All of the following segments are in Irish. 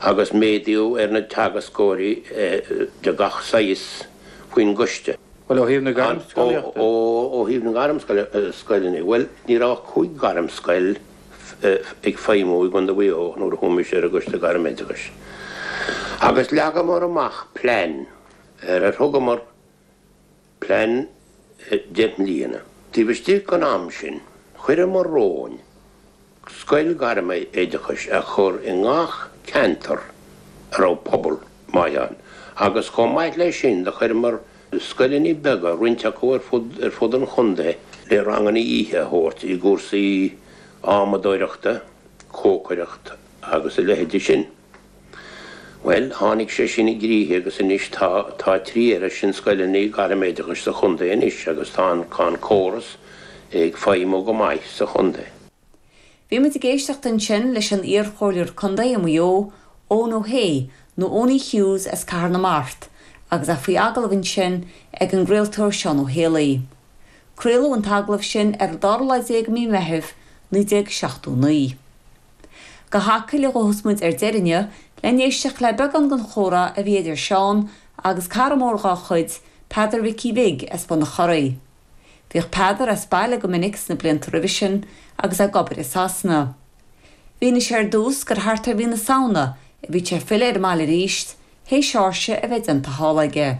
agus méadú ar na teagascóirí de gach saghas faoin gCoiste. Bhuel, ó thaobh na ngairmscoileanna de? Ó thaobh na ngairmscoileanna de? Bhuel, ní raibh ach cúig ghairmscoil ag feidhmiú i gContae Mhaigh Eo nuair a chuaigh mise ar an gCoiste Gairm-Oideachais agus leagamar amach plean ar ar thugamar plean deich mbliana. Taobh istigh den am sin, chuireamar romhainn scoil ghairme oideachais a chur i ngach ceantar a raibh pobal maith ann agus chomh maith leis sin do chuireamar scoileanna beaga, roinnt acu ar fud an chontae, le ranganna oíche a thabhairt i gcúrsaí adhmadóireachta, cócaireachta agus a leithide sin. Bhuel, tháinig sé sin i gcrích agus anois tá, tá trí oiread sin scoileanna gairm-oideachais sa chontae anois agus tá an, tá an córas ag feidhmiú go maith sa chontae. Bhí muid ag éisteacht ansin leis an iar-chomhairleoir contae i Maigh Eo, Eoin Ó hAodh, nó Eoiní Hughes as Cathair na Mart, agus é faoi agallamh ansin ag an gcraoltóir Seán Ó hÉalaí. Craoladh an t-agallamh sin ar an dara lá déag de mhí Meithimh, 1979. Go hAcaill a ghabhas muid ar deireadh inniu le n-éisteacht le beagán den chomhrá a bhí idir Seán agus cara mór dhá chuid, Peadar Mhicí Bhig as Bun a' Choraí. Bhíodh Peadar as baile go minic sna blianta roimhe sin agus é ag obair i Sasana. Mhínigh sé ar dtús gur thart ar mhí na Samhna a bhí sé ag filleadh ar an mbaile arís, théis séasúr a bheith déanta thall aige.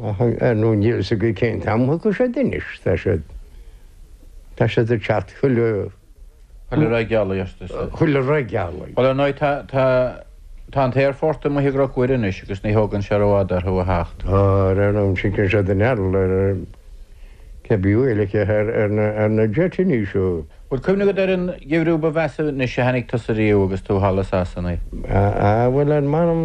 ar ndóigh, níl fhios againn cén t-am a thiocfaidh siad anois, tá siad, tá siad ag teacht chuile, Chuile ré gealaí, arsa sise. Chuile ré gealaí. Bhuel, ar ndóigh, tá, tá, tá an t-aerfort amuigh i gCnoc Mhuire anois agus ní thógann sé rófhada orthu a theacht. Á, ar aon nós, titeann siad in earra, ar, cé bith uaidh, like, ar, ar, ar na, ar na jeitíní seo. Bhuel, bhfuil cuimhne agat ar an gheimhreadh ba mheasa anois a chonaic tusa riamh agus tú thall i Sasana. Á, á, bhuel, ar m'anam.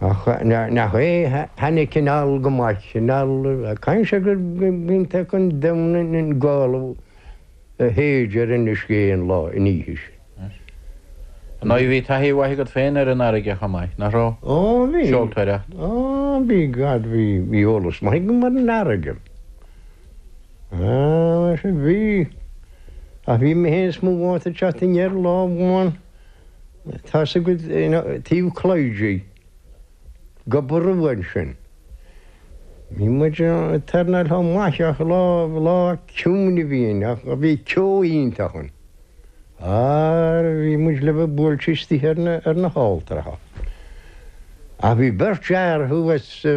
Ach nach é cheana cineál go maith cineál a cainnt go gcinntear chun domhain an Ghaelaigh a théid ar an uisce aon lá in oíche sin? Nó bhí taithí mhaith agat féin ar an fharraige a chomh maith, nach raibh? Ó bhí. Seoltóireacht. Ó bhí go deimhin, bhí eolas maith agam ar an fharraige. Á mar sin bhí. Ach bhí mé féin is m'athair ag teacht aniar lá amháin. Tá sí ina taobh cloigthrí go ború ansin. Bhí muid tar na lá maith ach lá lá ciúin a bhí in ach bhí ceo iontach ann. Aar bhí muid le bheith buailte istigh ar na ar na hailltreacha. Ach bhí beirt fhear thuas sa